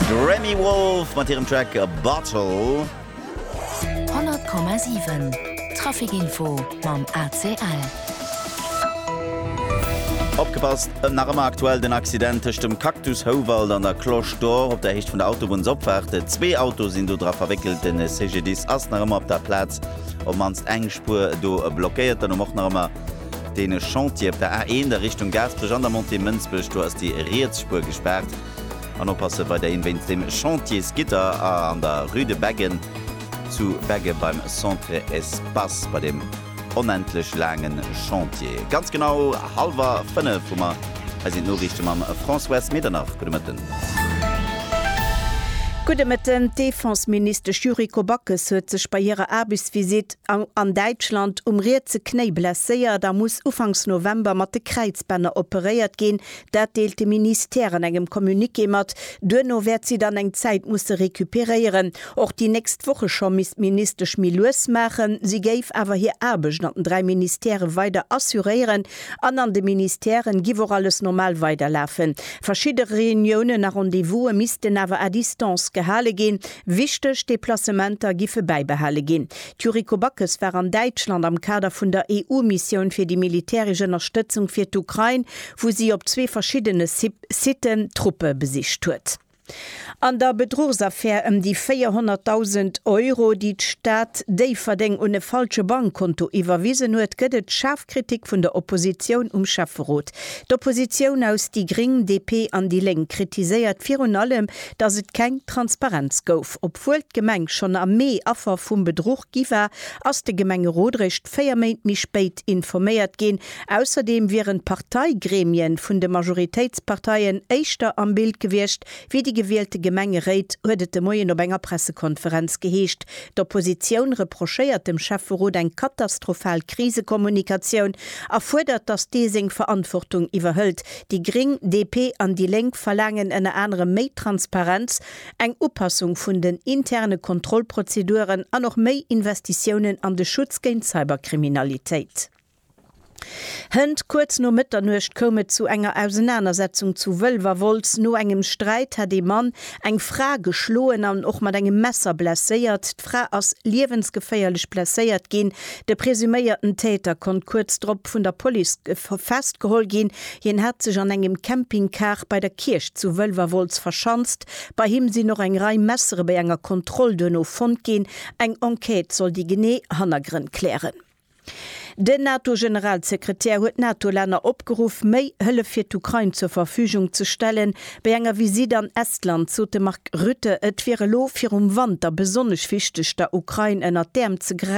D'Remi Wolf mat hirem Track Bottle. 100,7 Traficinfo mam ACL. Opgepasst, ëm nach ëmmer aktuell den Accident tëscht dem Cactus Houwald an der Cloche d'Or op der Héicht vun der Autobunnsopfaart. Zwee Autoe sinn do dra verwéckelt. De CGDIS ass nach ëmmer op der Plaz, op d'mannst eng Spuer do blockéiert. Dann hu mer och nach ëmmer. Dee Chantier op der A1 a Richtung Gaasperech an der Montée Mënsbech, do ass déi riets Spuer gespaart. An oppasse weiderhin wéinst dem Chantier Skitter an der Rue de Beggen zu Begge beim Centre Espace, bei deem onendlech laange Chantier. Ganz genau hallwer 5 hu mer. Hei sinn d'Noriichte mam Françoise Medernach. Gudde Mëtten. Gudde Mëtten. D'Defenseministesch Yuriko Backes huet sech bei hirer Aarbechtsvisitt, An Däitschland um rietse Knéi blesséiert a muss ufanks November mat de Kräizbänner operéiert ginn. Dat deelt de Ministère an engem Communiqué mat. Duerno wäert si dann eng Zäit musse recuperéieren. Och déi nächst Woche scho misst d'Ministesch méi lues maachen. Si géif awer hir Aarbecht an den dräi Ministèrë weider assuréieren an an de Ministèrë giff och alles normal weiderlafen. Verschidde Reuniounen a Rendez-vouse missten awer à distance gehale ginn. Wichteg Deplacementer giffe bäibehale ginn. D'Yuriko Backes war an Däitschland am Kader vun der EU-Missioun fir déi militäresch Ënnerstëtzung fir d'Ukrain, wou si op zwee verschiddene Siten Truppe besicht huet. An der Bedruchsaffär ëm déi 400.000 Euro, déi d'Stad Déifferdeng un e falsche Bankkonto iwwerwisen huet, gëtt et schaarf Kritik vun der Oppositioun um Schäfferot. D'Oppositioun aus déi gring, DP an déi Lénk kritiséiert virun allem, datt et keng Transparenz gouf. Obwuel d'Gemeng schonn am Mee Affer vum Bedruch gi war, ass de Gemengerot réischt véier Méint méi spéit informéiert ginn. Ausserdeem wieren d'Parteigremien vun de Majoritéitsparteien éischter am Bild gewiescht Fir déi gewielte Gemengeréit huet et de Moien op enger Pressekonferenz geheescht, d'Oppositioun reprochéiert dem Schäfferot eng katastrophal Krisekommunikatioun a fuerdert, datt dee seng Verantwortung iwwerhëlt. Déi Gréng, DP an déi Lénk verlaangen ënner anerem méi Transparenz, eng Upassung vun den interne Kontrollprozeduren an och méi Investitiounen an de Schutz géint Cyberkriminalitéit. Hënt. Kuerz no Mëtternuecht koum et zu enger Ausenanersetzung zu Wëlwerwolz. No engem Sträit hätt ee Mann eng Fra geschloen an och mat engem Messer blesséiert. D'Fra ass liewensgeféierlech blesséiert ginn. De presuméierten Täter konnt kuerz drop vun der Police festgeholl ginn. Hien hat sech an engem Campingcar bei der Kierch zu Wëlwerwolz verschanzt. Bei him sinn och eng Rei Messere bei enger Kontroll duerno fonnt ginn. Eng Enquête soll déi genee Hannergrënn klären. Den NATO-Generalsekretär huet d'NATO-Länner opgeruff, méi Hëllef fir d'Ukrain zur Verfügung ze stellen. Bei enger Visitt an Estland sot de Mark Rutte, et wier elo virum Wanter besonnesch wichteg, der Ukrain ënnert d'Äerm ze gräifen.